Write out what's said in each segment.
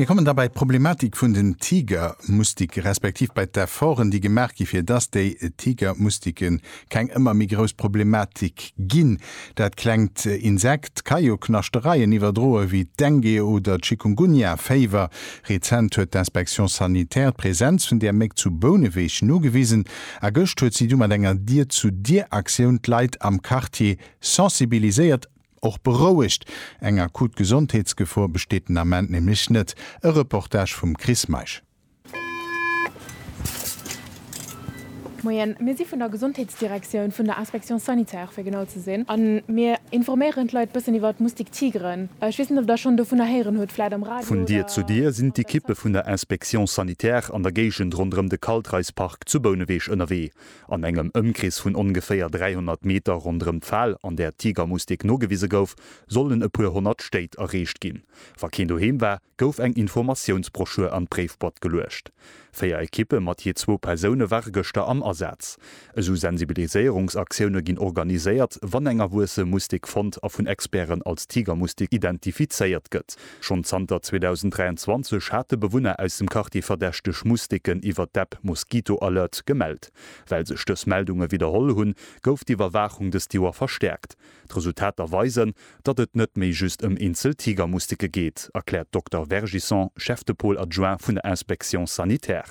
Mir kommen da bei d'Problematik vun den Tigermustike respektiv bei d'Efforten, déi gemaach gi fir dass déi Tigermustike keng ëmmer méi grouss Problematik ginn. Dat klengt Insekt ka jo Knaschtereien iwwerdroen, wéi d'Dengue oder d'Chikungunya-Féiwer. Rezent huet d'Inspection sanitaire d'Presenz vun där Méck zu Bouneweg nogewisen a gëscht huet si du mat enger Dier-zu-Dier-Aktioun d'Leit am Quartier sensibiliséiert, Och berouegt, eng akut Gesondheetsgefor besteet den Ament nämlech net. E Reportage vum Chris Meisch. Moien, mir si vun der Gesondheetsdirektioun, vun der Inspection sanitaire fir genau ze sinn, a mir informéieren d'Leit e bëssen iwwer d'Moustique tigre. Ech weess net, ob Der schonn dovunner héieren hutt, vläit am Radio oder Vun Dier zu Dier sinn d'Ekippe vun der Inspection sanitaire an der Géigend ronderëm de Kaltreispark zu Bouneweg ënnerwee. An engem Ëmkrees vun ongeféier 300 Meter ronderëm d'Fal, an där d'Tigermustik nogewise gouf, sollen e puer honnert Stéit erreecht ginn. Wa keen doheem war, gouf eng Informatiounsbroschür an d'Bréifboîte geluecht. Véier Ekippe mat jee zwou Persoune ware gëschter am Asaz. Esou Sensibiliséierungsaktioune ginn organiséiert, wann eng erwuesse Mustik fonnt a vun Experten als Tigermustik identifizéiert gëtt. Schonn zanter 2023 hate Bewunner aus dem Quartier verdächteg Musteken iwwer d'App Mosquito Alert gemellt. Well sech dës Meldunge widderholl hunn, gouf d'Iwwerwaachung dëst Joer verstäerkt. D'Resultater weisen, datt et net méi just ëm eenzel Tigermusteke geet, erkläert d'Dokter Vergisson, Chef de Pôle adjoint vun der Inspection sanitaire.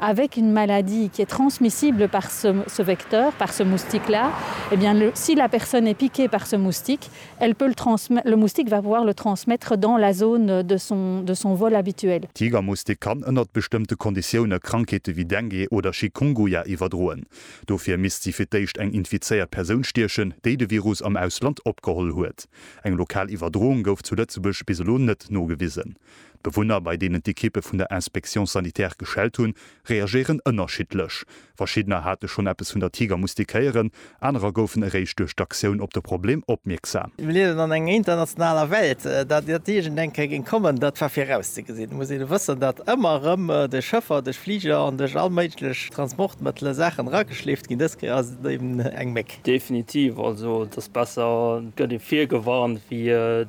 avec une maladie qui est transmissible par ce ce vecteur, par ce moustique là, eh bien le si la personne est piquée par ce moustique, elle peut le transmet le moustique va pouvoir le transmettre dans la zone de son de son vol habituel. Tigermoustik kann ënnert bestëmmte Konditioune Krankheete wéi Dengue oder Chikunguya iwwerdroen. Dofir misst si fir d'éischt eng infizéiert Persoun stiechen, déi de Virus am Ausland opgeholl huet. Eng lokal Iwwerdroung gouf zu Lëtzebuerg bis elo net nogewisen. D'Bewunner, bei deenen d'Ekippe vun der Inspection sanitaire geschellt hunn, reagéieren ënnerschiddlech. Verschiddener hate schonn eppes vun der Tiger moustiquéieren, anerer goufen eréischt duerch d'Aktioun op de Problem opmierksam. Mir liewen an enger internationaler Welt. Datt iert iergend eng Kéier géing kommen, dat war virauszegesinn. Et muss een wëssen, datt ëmmer erëm duerch Schëffer, duerch Fliger an duerch all méiglech Transportmëttele Saachen erageschleeft ginn. Dës Kéier ass et eben eng Méck. Definitiv. Also et ass besser, et gëtt ee virgewarnt, wéi.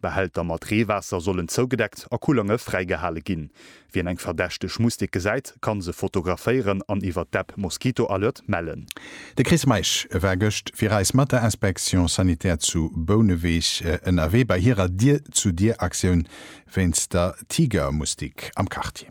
Behälter mat Reewaasser sollen zougedeckt a Kullange fräigehale ginn. Wien eng verdächteg Mustik gesäit, kann se fotograféieren an iwwer d'App Mosquito Alert mellen. De Chris Meisch war gëscht fir eis mat der Inspection sanitaire zu Bouneweg ënnerwee bei hirer Dier-zu-Dier-Aktioun wéinst der Tigermustik am Quartier.